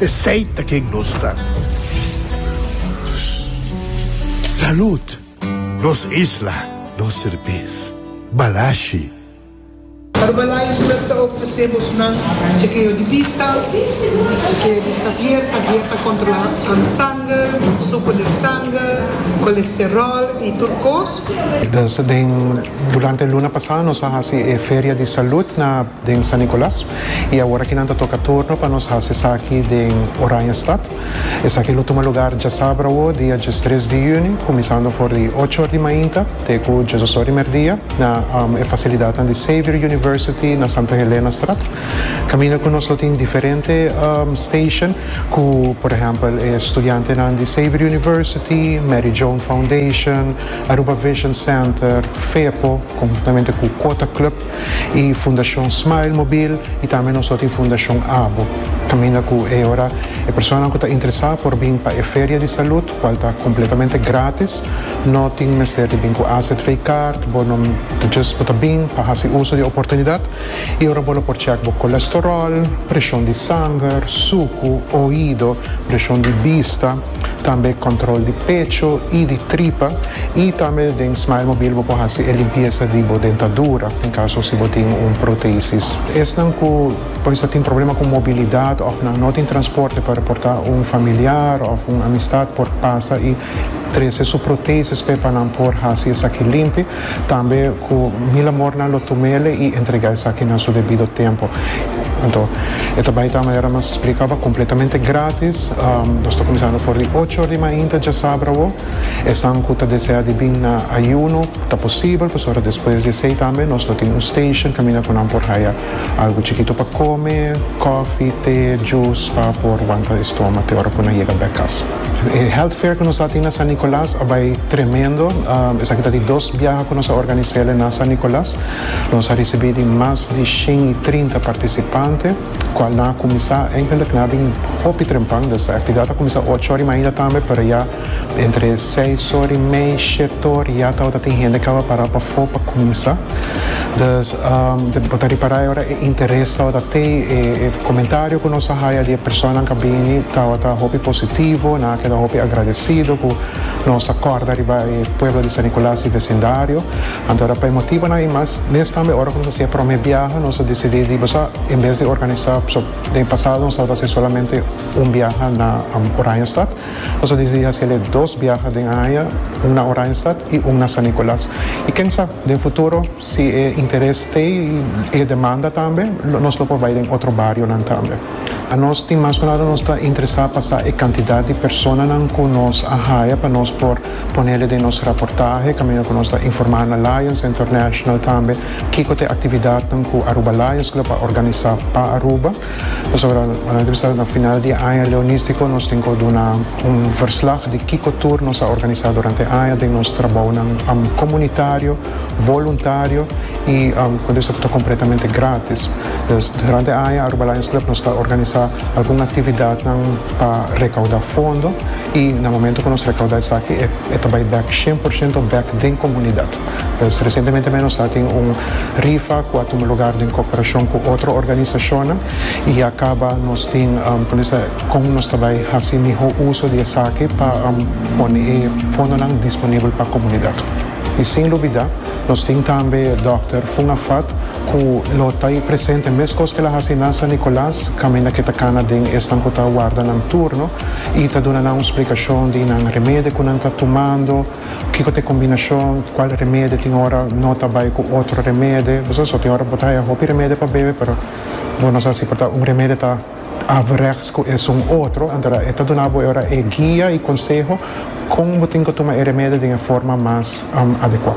Esey ta ken nos ta. Salud! Nos isla, nos serbes. Balashi. Herbalife Club ta ofresé bosnan chekeo di bista, chekeo di sabier, sabier ta kontrolá sanger, suko den sanger, kolesteròl i tur kos. Den durante e luna pasá nos a hasi e feria di salud na. den San Nicolas y awor aki nan ta toca turno pa nos haci esaki den Oranjestad. Esaki lo tuma lugar diasabra awor dia diestres di juni cuminsando for di ocho or di mainta te cu diesdos or di merdia na e facilidadnan di Xavier University na Santa Helenastraat caminda cu nos lo tin diferente station cu por ehempel e studiantenan di Xavier University, Mary Joan Foundation, Aruba Vision Center, FEPO conjuntamente cu Quota Club. y Fundacion Smile Mobil y tambe nos lo tin Fundacion Abo. Caminda cu e ora e personanan cu ta interesa por bin pa e feria di salud cual ta completamente gratis, no tin mester di bin cu azv card, bo no ta just bo ta bin pa haci uso di e oportunidad y ora bo lo por check bo colesterol, presion di sanger, sucu, oido, presion di bista. Tambe control di pecho y di tripa y tambe den Smile Mobil bo por haci e limpieza di bo dentadura en caso si bo tin un protesis. Esnan cu por esta tin problema cu mobilidad of nan no tin transporte pa reporta un familiar of un amistad por pasa y trece su protesis pe pa nan por haci esaki limpi. Tambe ku mil amornan lo tum'é el i entregá esaki na su debido tempu. Anto e ta bai ta manera mas splika ba kompletamente grátis. Nos ta kuminsando for di ocho or di mainta djasabra awo. Esnan ku ta desea di bin na ayuno ta posibel pasobra despues di esei tambe nos lo tin un station kaminda ku nan por haya algu chikitu pa kome, kòfi, te, djus pa por wanta e stoma te ora ku nan yega bèk kas. E health fair ku nos a tin na San Nicolas a bai tremendo. Esaki ta di dos biaha ku nos a organis'é el na San Nicolas. Nos a risibí di mas di shen i trinta partisipante, kual nan a kuminsá eigenlik nan a bin hopi trempan. Desha aktividat a kuminsá ocho ora i mainda tambe, pero ya entre seis ora i mei, shete ora ya tabata tin hende ku a pará pafó pa kuminsá. Dus bo ta ripará e ora e interes tabata tei, e komentario ku nos a haya di e personanan ku a bini tabata hopi positivo, nan a keda hopi agradesido ku nos a kòrda riba e pueblo di San Nicolas i vesindario. Anto ora pa e motibonan i mas, mes tambe ora ku nos a hasi e promé biaha nos a disidí di boso en bes di organisá, den e pasado nos tabata hasi solamente un biaha na Oranjestad, Nos a disidi hasel'e dos biaha den aña, un na Oranjestad i un na San Nicolas. I ken sa, den futuro si e interes stay i e demanda tambe, nos lo por bai den otro barionan tambe. Nos tin mas kunal nos ta interesá pa sa e kantidat di personanan ku nos a haya pa nos por ponel'e den nos raportahe kaminda ku nos ta informá na Lions International tambe kiko ta e aktividatnan ku Aruba Lions lo pa organisá pa Aruba. Pasobra nan ta bisa na final di e aña leonístiko nos tin ku duna un verslag di kiko tur nos a organisá durante e aña den nos trabounan komunitario, voluntario i ku ta bisa ku ta kompletamente grátis. Dus durante e aña Aruba Lions Club nos ta organisá algun aktividatnan pa rekaudá fondo i na momentu ku nos rekaudá esaki e ta bai bèk shien por shento bèk den komunidat. Pues recientemente mei nos a tin un rifa cu a tuma lugar den cooperacion cu otro organisacionnan y ya caba nos tin conesa con nos ta bay haci miho uso di esaki pa pone e fondonan disponibel pa comunidad. Y sin lubida nos tin tambe Dòkter Funa Fat cu lo ta presente mescos cu el a haci na San Nicolas caminda cu e ta cana den esnan cu ta warda nan turno y ta duna nan un splicacion di nan remedi cu nan ta tumando, Kiko ta e kombinashon, kual remede tin ora no ta bai ku otro remede, bo sa aso, tin ora bo ta haya hopi remede pa bebe pero bo no sa si por ta un remede ta averechts ku esun otro, anto e ta duna bo e ora e guia i konseho kon bo tin ku tuma e remede den e forma mas adekua.